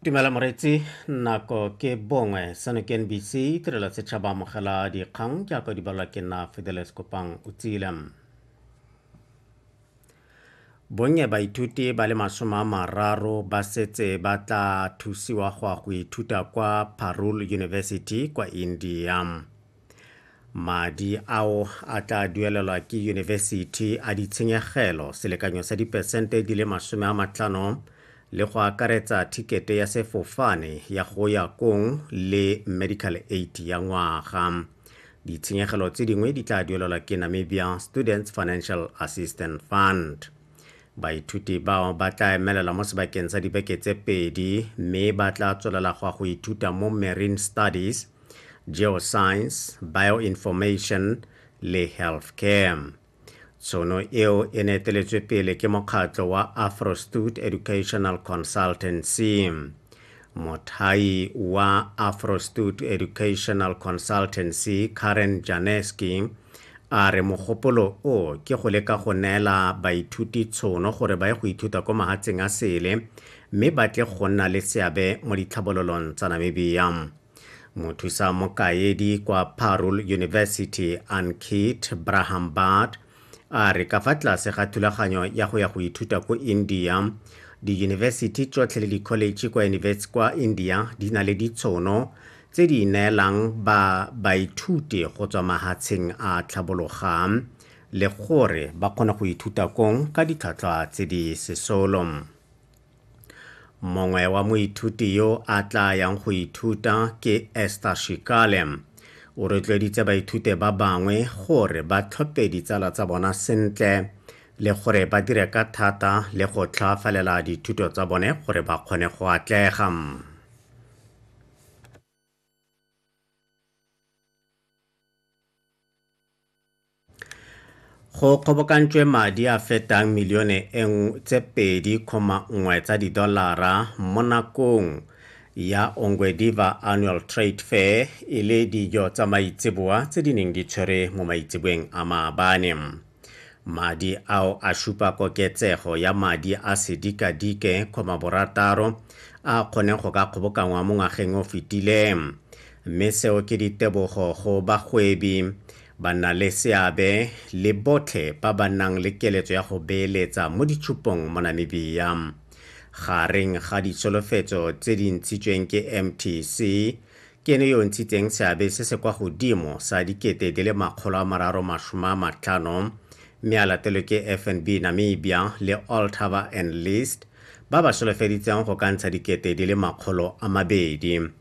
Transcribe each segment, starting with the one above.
tumela moretsi nako ke bongwe seno ke nbc tirelo setšhaba amogela dikgang jaaka di balwa ke nna fideles kopang o tsile bonnye baithuti ba le masome a mararo ba setse ba tla thusiwa go ya go ithuta kwa parul university kwa india madi ao a tla duelelwa ke yunibesithi a ditshenyegelo selekanyo sa dipesente di le masome a matlhano le go akaretsa thikete ya sefofane ya go ya kong le medical aid ya ngwaga ditshenyegelo tse dingwe di tla duelelwa ke namibia students financial assistance fund Baithuti bao ba tla emelela mo sebakeng sa dibeke tse pedi mme ba tla tswelela go ya go ithuta mo Marine Studies, Geoscience, Bioinformation le Healthcare. Tshono eo e ne eteletswe pele ke mokgatlho wa Afrostud Educational Consultancy. Mothai wa Afrostoot Educational Consultancy Karen Janeski a re mogopolo o ke go leka go neela baithuti tshono gore ba ye go ithuta ko mahatsheng a sele mme ba tle go nna le seabe mo ditlhabololong tsa Namibia. mothusa mokaedi kwa parul university ankit brahambad a re ka fa tlase ga thulaganyo ya go ya go ithuta ko india diyunibesithi tsotlhe le dikholetšhe kwa india di na le ditshono tse di neelang ba baithuti go tswa mahatsheng a tlhabologang le gore ba kgone go ithuta kong ka ditlhwatlhwa tse di sesolo Mongwe wa moithuti yo a tla yang go ithuta ke Esther Shikale. O rotloeditse baithute ba bangwe gore ba tlhophe ditsala tsa bona sentle le gore ba dire ka thata le go tlhaafalela dithuto tsa bone gore ba kgone go atlega. go kgobokantšwe madi a fetang milione tse 2,1 tsa didolara mo nakong ya ongwediva annual trade fair e le dijo tsa maitseboa tse di neng di tshwere mo maitseboeng a maabane madi ao a šupa koketsego ya madi a sedikadike kgoma borataro a kgone go ka kgobokangwa mo ngwageng o fetileng mme seo ke ditebogo go bagwebi Bannaleseabe le botlhe ba ba nang le keletso ya go beeletsa mo ditshupong mo Namibia. Gareng ga ditsholofetso tse di ntshitsweng ke MTC, ke ene yo o ntshitseng seabe se se kwa godimo sa dikete di le makgolo a mararo masome a matlhano mme a latelwe ke FNB Namibia le Altaba and List ba ba solofeditseng go ka ntsha dikete di le makgolo a mabedi.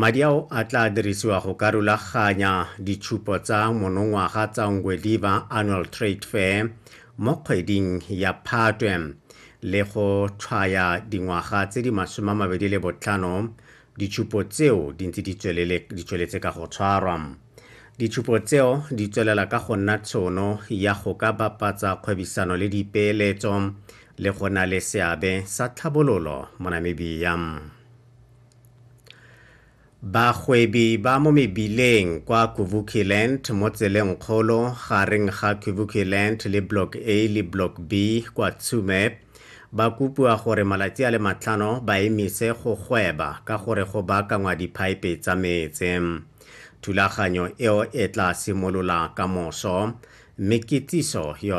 Madi ao a tla dirisiwa go ka rulaganya ditshupo tsa monongwaga tsa Ngwediva Annual Trade Fair mo kgweding ya Phatwe le go tshwaya dingwaga tse di masome a mabedi le botlhano ditshupo tseo di ntse di tsweletse ka go tshwarwa. Ditshupo tseo di tswelela ka go nna tshono ya go ka bapatsa kgwebisano le dipeeletso le go na le seabe sa tlhabololo mo Namibia. Bagwebi ba mo mebileng kwa Kuvukiland mo tseleng kgolo gareng ga Kuvukiland le Block A le Block B kwa Tshume ba kopiwa gore malatsi a le matlhano ba emise go gweba ka gore go baakangwa diphaepe tsa metse. Thulaganyo eo e tla simolola ka moso mme kitsiso yona